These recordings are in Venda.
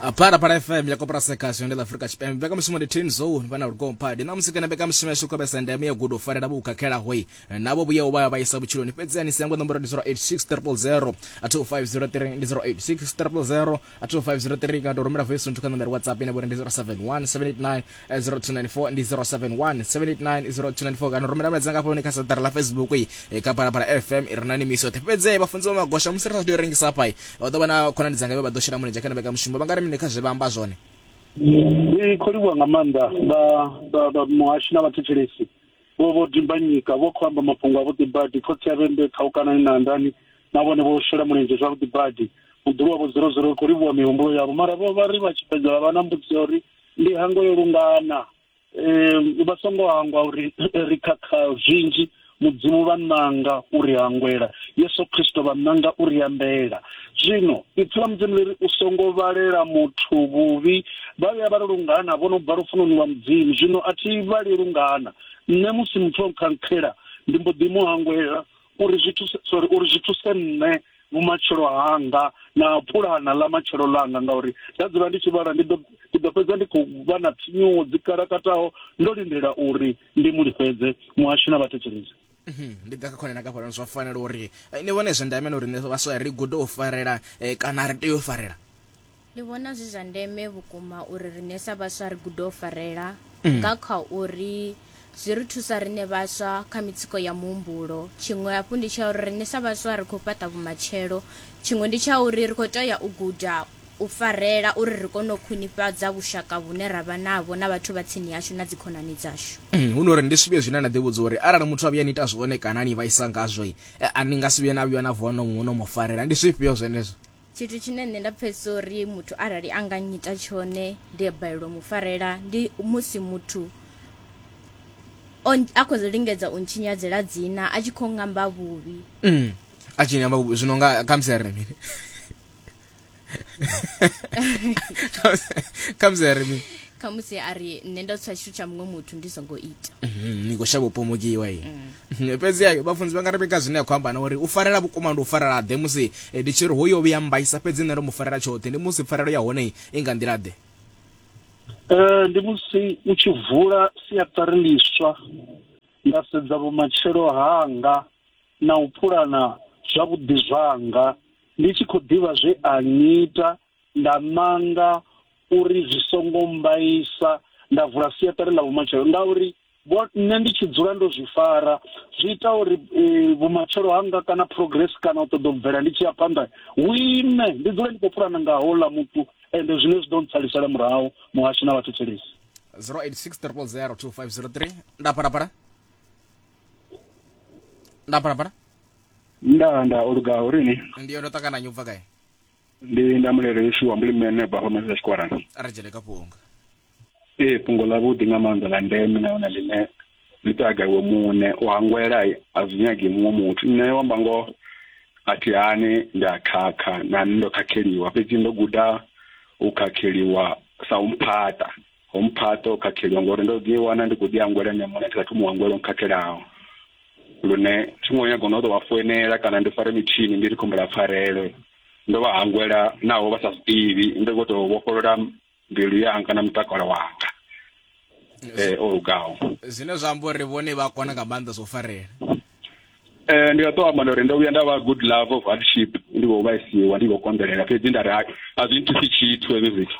apara para fm ya kopera sekasho ndi la afrika tshipembe mbekamishumo ndi tin zone vana lugongo phadi na musikana mbekamishumo yashu khobesa ndeme ya gudo farela vhukakhela hoi navo vhuya u vhaya vhaisa vhutshiloni fhedzi ani siyango nomboro ndi 086000 2503 ndi 086000 2503 kana to rumela voice nthu kha nomboro whatsapp ine vhori ndi 071789 0294 ndi 071 789 0294 kana rumela mulaedza nga fhoni kha saḓara ḽa facebook i eh, kha phalaphala fm i re na nimiso yoṱhe fhedze vhafunzi vha magosha musi ri sa tea u rengisa hafha i vha ḓo vha na khonani dzanga vhe vha ḓo shela mulenzhe kha na vhekamushumo vha nga ri mini kha zwe vha amba zwone ndi khou livhuwa nga maanḓa vha- vha- vha muhashi na vhathetshelesi vho vho dimbanyika vho khou amba mafhungo avhuḓi badi khotsi ya vhembe khaukanani na andani na vhone vho shela mulenzhe zwavhuḓi badi muḓulu wavho zero zero ri khou livhuwa mihumbulo yavho mara vho vha ri vha tshi fhedza vha vha na mbudziso ya uri Ndi hango yo lungana um vha songo hangwa uri ri khakha zwinzhi mudzimu vha nanga uri hangwela yesu khristo vha nanga uri ambela zwino ipfi ḽa mudzimu ḽiri u songo vhalela muthu vhuvhi vha vhuya vha ri lungana vho no bva lufunoni lwa mudzimu zwino a thi vhali lungana nṋe musi muthu o nkhangkhela ndi mbo ḓi mu hangwela uri zwi thuse sorry uri zwi thuse nṋe vhumatshelo hanga na pulana ḽa matshelo ḽanga ngauri nda dzula ndi tshi vhala ndi ḓo ndi ḓo fhedza ndi khou vha na tsinyuwo dzi kalakataho ndo lindela uri ndi mu lifhedze muhasho na vhathetshelezi mhm, ndi ḓa kha khone na kafhalano zwa fanela uri eh, ni vhone zwa ndame na uri nṋe vhaswa ri gude u farela eh, kana ri tea u farela Ndi vhona zwi zwa ndeme vhukuma uri riṋe sa vhaswa ri gude u farela mm. nga kha uri zwi ri thusa riṋe vhaswa kha mitsiko ya muhumbulo tshiṅwe hafhu ndi tsha uri riṋe sa vhaswa ri khou fhaṱa vhumatshelo tshiṅwe ndi tsha uri ri khou tea u guda u farela uri ri kone u khwinifhadza vhushaka vhune ra vha navho na vhathu vha tsini yashu na dzikhonani dzashu mm, hu no uri ndi zwivhuya zwine na ḓivhudza uri arali muthu a vhuya ni ita zwone kana ni vhaisa ngazwo eh, a ni nga si vhuye na vhuya na vuwa no muno mu farela ndi zwifhio zwenezwo Tshithu tshine nṋe nda pfhesesa uri muthu arali a nga nyita tshone ndi a balelwa mu farela ndi musi muthu a khou lingedza u ntshinyadzela dzina a tshi khou ngamba vhuvhi mm. a tshi ngamba vhuvhi zwino nga khamusi a ri mini khamusi a ri mini khamusi a ri nṋe ndo tswa tshithu tsha muṅwe muthu ndi songo ita mhm, ni khou shavha u pomokiwa i mm. fhedzi ayo vhafunzi vha nga rebeka zwine a khou amba na uri u farela vhukuma ndi u farela ḓe musi eh, ndi tshi ri hoyo vhuya mbaisa fhedzi nṋe ndo mu farela tshoṱhe ndi musi pfarelo ya hone i nga nḓila ḓe um ndi musi u tshi vula siaṱari ḽiswa nda sedza vhumatshelo hanga na u pulana zwavhuḓi zwanga ndi tshi khou ḓivha zwe a ngita Nda nanga uri zwi songo mmbaisa nda vula siaṱari ḽa vhumatshelo ngauri vho nṋe ndi tshi dzula ndo zwi fara zwi ita uri vhumatshelo hanga kana progress kana u ṱoḓa u bvela ndi tshi ya phanḓa hu ime ndi dzule ndi khou pulana nga houḽa muthu ende zwine zwi ḓo ntsalisela murahu muhasho na vhathetshelesi 0860002503 nda phalaphala nda phalaphala nda nda o lugaho uri ni ndi yo ndo ṱangana nyo bva kae ndi nda mulele yeshu wa mbulimene bva home zwa tshikwarani ri dzhene kha fhungo ee fhungo ḽa vhuḓi nga maanḓa ḽa ndeme nahone ḽine ḽi taga iwe muṋe u hangwela a zwi nyagi muṅwe muthu nṋe wa mba ngoho a thi hani ndi a khakha na nṋe ndo khakheliwa fhedzi ndo guda u khakheliwa sa u mphaṱa ho mphaṱa o khatheliwa ngori ndo ḓi wana ndi khou ḓi angwela nṋe muṋe ndi sa thoma u angwela o khathelaho lune thi ngo nyaga no tou vha foinela kana ndi fare mitshini ndi ri khombela pfarelo ndo vha hangwela naho vha sa zwiḓivhi ndi khou tou vhofholola mbilu yanga na mutakalo wanga eh o lugaho zwine zwa amba uri vhone vha kona nga maanḓa zwo farela eh ndi nga to amba uri ndo vhuya nda vha good love of hardship ndi vho vhaisiwa ndi vho konḓelela fhedzi nda ri a zwi nthusi tshithu hezwi zwithu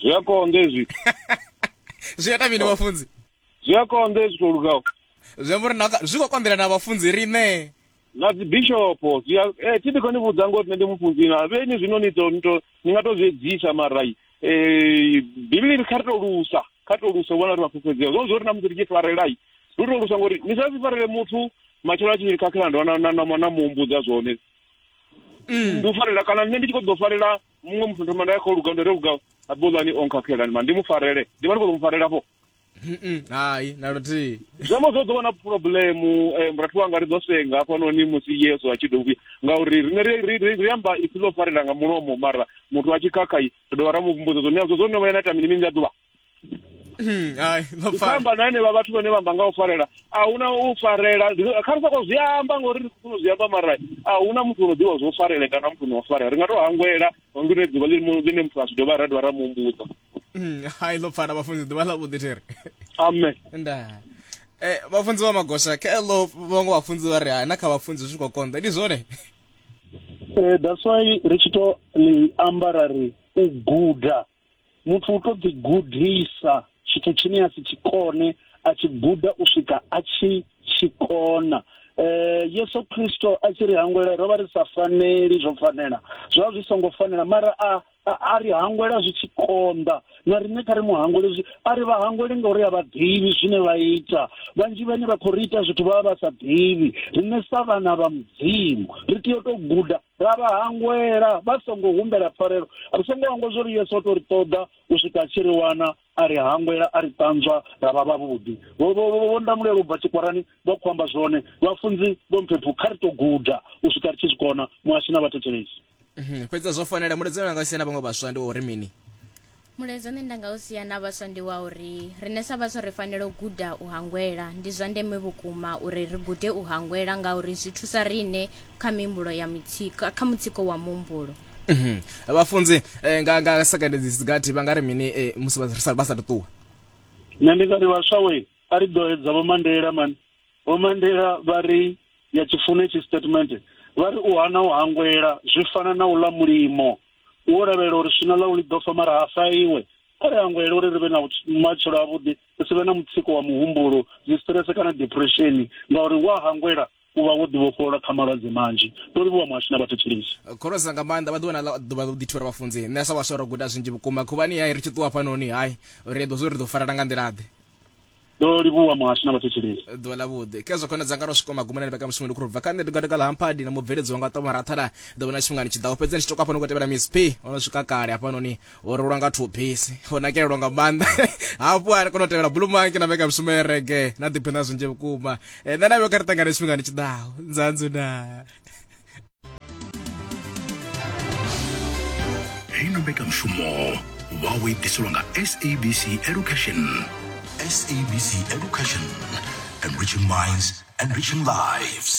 zwi a konḓa hezwi zwi ita mini vhafunzi zwi a konḓa hezwi to lugaho zwi amba uri zwi khou konḓela na vhafunzi riṋe na dzibishopo zwi a eh, thi ndi khou ni vhudza ngori nṋe ndi mufunzi na vhe ni zwino ni to ni to ni nga to zwi edzisa marai um eh, bivhili kha ri to lusa kha ri to lusa vhona ri vhafhufhedzea zwo zwo ri na musi ri tshi farelai ri to lusa ngori ni sa si farele muthu matshelo a tshi khakhela ndo na na na na muhumbudza zwone mm. ndi u farela kana nṋe ndi tshi khou ḓo farela muṅwe muthu thoma nda kha luga nda luga abulani o nkhakhela ma ndi mu farele ndi vha ndi khou mu farela vho hai na luthihi zwi amba zwo ḓo vha na phuroblemu eh, murathu wanga ri ḓo senga hafhanoni musi yesu a tshi ḓo vhuya ngauri rine ri amba ipfi ḽo farela nga mulomo mara muthu a tshi khakha ri dovha ra mu vhumbudza zwo neazwo zwo no vha ya na ita mini mini nga ḓuvha Hmm, hai ndo pfala amba na henevha vhathu vhane vha amba nga u farela a huna u farela Zwi- kha ri soko zwi amba ngori ri khou zwi amba mara a huna muthu ono ḓivha zwo farele kana muthu ono farela ri nga to hangwela ngori ne ḓuvha ḽine ḽine muthu a zwi dovha ra dovha ra mu humbudza Hmm, hai ndo pfala vhafunzi ḓuvha ḽa vhuḓi thiri amen nda eh vhafunzi vha magosha kha lo vhongo vhafunzi vha ri hai na kha vhafunzi zwi khou konḓa ndi zwone Eh, that's why ri tshi to ḽi amba ra ri u guda muthu u to ḓi gudisa tshithu tshine a si tshi kone a tshi guda u swika a tshi tshi kona eh Yesu Kristo a tshi ri hangwela ro vha ri sa faneli zwo fanela zwa zwi songo fanela mara a a ri hangwela zwi tshi konḓa na riṋe kha ri muhangwele zwi a ri vha hangwele ngauri a vha ḓivhi zwine vha ita vhanzhi vhane vha khou ri ita zwithu vha vha vha sa ḓivhi riṋe sa vhana vha mudzimu ri tea u tou guda Ra vha hangwela vha songo humbela pfarelo. Ri songo hangwa zwo ri Yesu o tou ri ṱoḓa u swika a tshi ri wana, a ri hangwela, a ri ṱanzwa ra vha vhavhuḓi. Vho vho vho vho ndamulela u bva tshikwarani vha khou amba zwone. Vhafunzi vho mphephu, kha ri tou guda u swika ri tshi zwi kona, muhashi na vhathetshelesi. Fhedzi a zwo fanela. Muledzano wanga u si na vhaṅwe vhaswa ndi wa uri mini? Mulaedza une nda nga u sia na vhaswa ndi wa uri riṋe sa vhaswa ri fanela u guda u hangwela. Ndi zwa ndeme vhukuma uri ri gude u hangwela ngauri zwi thusa riṋe kha mihumbulo ya mutsiko, kha mutsiko wa muhumbulo. Mhm. Vhafunzi eh, nga nga second dzi sigathi vha nga ri mini eh, musi vha sa vha sa ṱuwa. Nṋe ndi nga ri vhaswa we a ri ḓo edza vho Mandela man. Vho Mandela vha ri ya tshifune tshi statement vha ri u hana u hangwela zwi fana na u ḽa mulimo. wo lavhelela uri swina ḽau ḽi ḓo fa mara ha fa iwe kha ri hangwele uri ri vhe na matshelo avhuḓi ri si vhe na mutsiko wa muhumbulo dzi stress kana depression ngauri wa hangwela u vha wo ḓivhofholola kha malwadze manzhi ndo livhuwa muhashi na vhathetshelisi eh, khorosa nga maanḓa vha ḓuvha na ḓuvha ḓo ḓithivhela vhafunzi nṋe sa vhaswa ro guda zwinzhi vhukuma khuvhani hai ri tshi ṱuwa fhanoni hai ri eḓo zwo ri ḓo farela nga nḓilaḓe ndo livhuwa muhasho na vhathetshelesi ḓuvha ḽa vhuḓi khezwo khona dzanga ro swika magumoni ni vhekamushumo ndi khou bva kha nṋe ndi gatika ḽa hamphadi na mubveledzi wanga ṱoma rathana ḓo vhona tshifhingani tshi ḓaho fhedzi ndi tshi toka hafha no khou tevhela miss p o no swika kale hafhanoni o rulwa nga thubisi o nakelelwa nga maanḓa hafhu a kona u tevhela bulumanke na mbekanyamushumo ya rege na ḓiphe na zwinzhi vhukuma eh, nṋe na vhe kha ri ṱangane tshifhingani tshi ḓaho nzanzu na heyi no mbekanyamushumo vha o i ḓiselwa nga sabc education sabc education enriching minds enriching lives